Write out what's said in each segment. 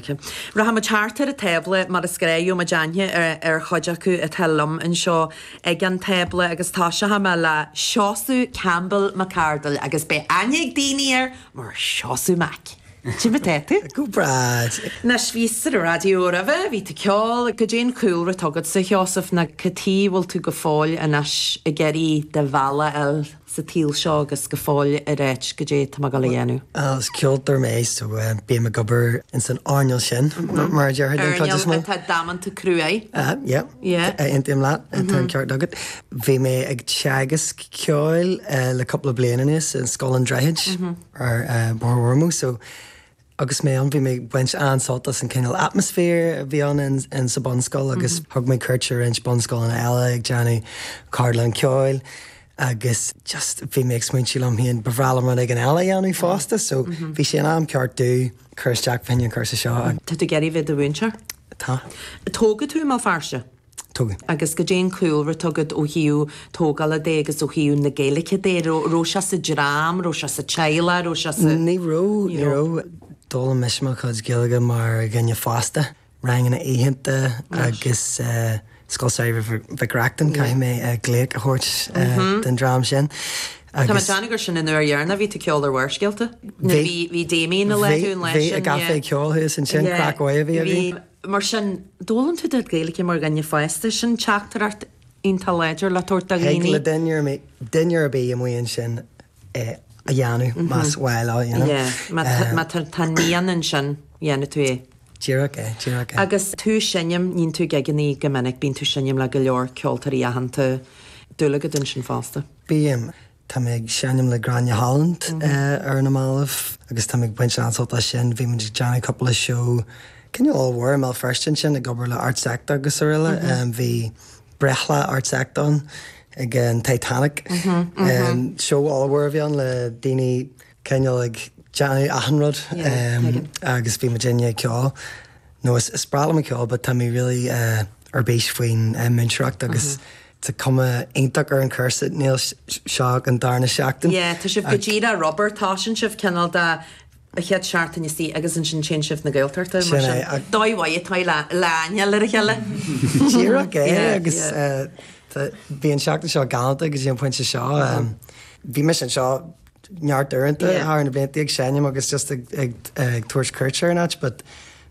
Rachaimid thart ar an tábla go gcuirfidh muid aithne ar chuid acu atá liom anseo ag an tábla agus toiseochaidh mé le Seosamh Campbell Mac Ardail agus beidh aithne ag daoine air mar Seosamh Mac. Cad é mar atá tú? Go breá. Bhí tú ar an raidió roimhe, bhí tú ceol. Cad é an cúlra atá agatsa, a Sheosaimh, nó an bhfuil tú go fóill anois ag iarraidh do bhealach a fháil? sa tsaol seo agus go fóill ar áit, cad é tá mé ag gabháil a dhéanamh. Bhuel, is ceoltóir mé so bím ag obair insan earnáil sin, mar a déarfá, den chuid is mó. Earnáil atá damanta cruaidh. Aha, yep. Yeah. Aontaím leat, tá an ceart agat. Bhí mé ag teagasc ceoil le cúpla bliain anuas in Scoil an Droichid ar Bhóthar Ormeau so, Agus mé ann, bhí mé ag baint an-sult as an cineál atmaisféir a bhí ann sa bhunscoil agus thug mé cuairt ar roinnt bunscoileanna eile ag déanamh ceardlann ceoil agus just bhí mé ag smaointiú liom féin, ba bhreá liom rud éigin eile a dhéanamh fosta so bhí sé in am ceart domh cur isteach fá choinne an chúrsa seo. Tá tú ag iarraidh a bheith i do mhúinteoir? Tá. Tógadh tú i mBéal Feirste? Tógadh. Agus cad é an cúlra atá agat ó thaobh tógála de agus ó thaobh na Gaeilge de. Raibh sé sa dream, raibh sé sa teaghlach, raibh sé sa. Ní raibh, ní raibh. D'fhoghlaim mise mo chuid Gaeilge mar dhuine fásta, ranganna oíche agus Scoil Samhraidh Mhic Reachtain, caithfidh mé glaoch a thabhairt don dream sin agus. Tá mé ag déanamh gur sin an uair dheireanach a bhí tú ag ceol ar Bharrscéalta? Nuair a bhí, bhí Damien i láthair an lá sin, yeah. Bhí, bhí i gCaifé Ceoil thuas ansin, craic mhaith a bhí againn. Mar sin, d'fhoghlaim tú do Ghaeilge mar dhuine fásta, sin teachtaireacht iontach láidir le tabhairt do dhaoine. Thig le duine ar bith amuigh ansin é a dhéanamh más mhaith leo, you know. Yeah, má tá an mian ansin, dhéanfaidh tú é. Díreach é, díreach é. Agus tú ag seinm, níonn tú gigeanna go minic, bíonn tú ag seinm le go leor ceoltóirí aitheanta. Dúil agat ansin fosta? Bíonn. Tá mé ag seinm le Gráinne Holland ar na mallaibh agus tá mé ag baint an-sult as sin. Bhí muid ag déanamh cúpla seó cineál ollmhór i mBéal Feirste ansin ag obair le ArtsEkta agus aroile. Bhí breithlá ArtsEkta ann ag an Titanic. Seó ollmhór a bhí ann le daoine cineál ag déanamh achan rud agus bhí muid ag déanamh ceol nó is is breá liom an ceol but tá mé really ar bís faoin múinteoireacht agus tá cuma iontach ar an chúrsa níl seo an darna seachtain yeah tá sibh go díreach rinne sibh cineál de chéad seachtain istigh agus ansin téann sibh na Gaeltachta mar sin dóigh mhaith atá le haithne a chur ar a chéile díreach é agus bhí an seachtain seo galanta agus dtí an pointe seo bhí mé anseo neart uaireanta thar na blianta ag seinm agus just ag ag tabhairt cuairt ar an áit but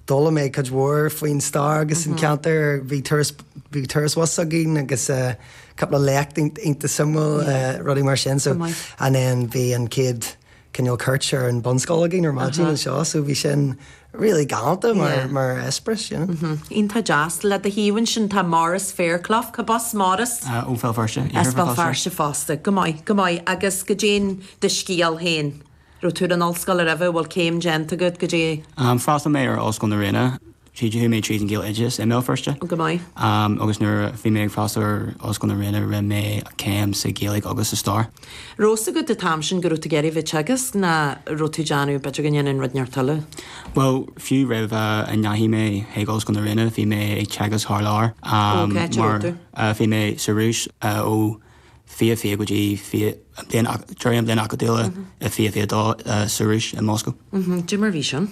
d'fhoghlaim mé cuid mhór faoin stair agus an ceantar bhí turas bhí turas bhus againn agus eh, cúpla léacht iontach suimiúil eh, rudaí mar sin so and then bhí an céad cineál cuairt ar an bunscoil againn ar maidin anseo so bhí sin really galánta mar eispearas, you know. Iontach deas. Le do thaobh ansin tá Maurice Fairclough. Cárb as Maurice? Ó Bhéal Feirste, iarthar Bhéal Feirste. As Béal Feirste fosta. Go maith, go maith. Agus cad é do scéal féin. Raibh tú ar an ollscoil roimhe? An bhfuil céim déanta agat? Cad é? D'fhreastail mé ar Ollscoil na Ríona. Chuaigh mé tríd an Ghaeloideas i mBéal Feirste. Go maith. Agus nuair a bhí mé ag freastal ar Ollscoil na Ríona rinne mé céim sa Ghaeilge agus sa Stair. Raibh a fhios agat an t-am sin go raibh tú ag iarraidh a bheith ag teagasc nó an raibh tú ag déanamh b'fhéidir go ndéanfainn rud inteacht eile. Bhuel, fiú roimh a ndeachaigh mé chuig Ollscoil na Ríona bhí mé ag teagasc thar lear, am, mar bhí mé sa Rúis ó fiche fiche go dtí fiche, an bhliain, deireadh an bhliain acadúla i fiche fiche dó sa Rúis, i Moscó. Cad é mar a bhí sin?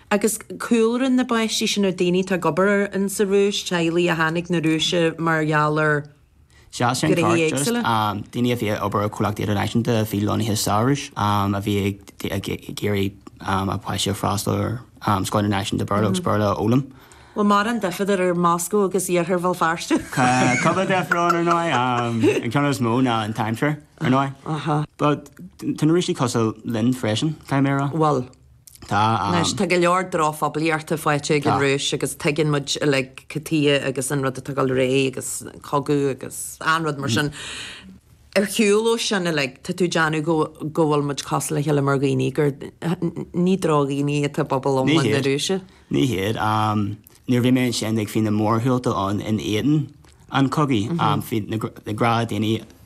Agus cúlra na bpáistí sin ar daoine atá ag obair ann sa Rúis, teaghlaigh a tháinig na Rúise mar gheall ar Sea, sin an ceart, just daoine a bhí ag obair ar chomhlachtaí idirnáisiúnta a bhí lonnaithe sa Rúis a bhí ag iarraidh a páistí a fhreastal ar scoil idirnáisiúnta Béarla agus Béarla a fhoghlaim. Bhuel, mórán difear idir Moscó agus iarthar Bhéal Feirste. Cúpla difear ann, ar ndóigh, an ceann is mó ná an t-aimsir, ar ndóigh. But tá na Rúisigh cosúil linn freisin, caithfidh mé a rá. Bhuel. Tá an. Tá go leor drochphoiblíochta faighte ag an Rúis agus tuigeann muid uilig cad chuige agus an rud atá ag dul ar aghaidh agus cogadh agus an rud mar sin. Ar shiúl ó sin uilig tá tú ag déanamh go go bhfuil muid cosúil le chéile mar dhaoine gur ní drochdhaoine atá i bpobal iomlán na Rúise. Ní hiad. Nuair a bhí mé ansin agus bhí na mórshiúlta ann in éadan an chogaidh, bhí na gnáthdhaoine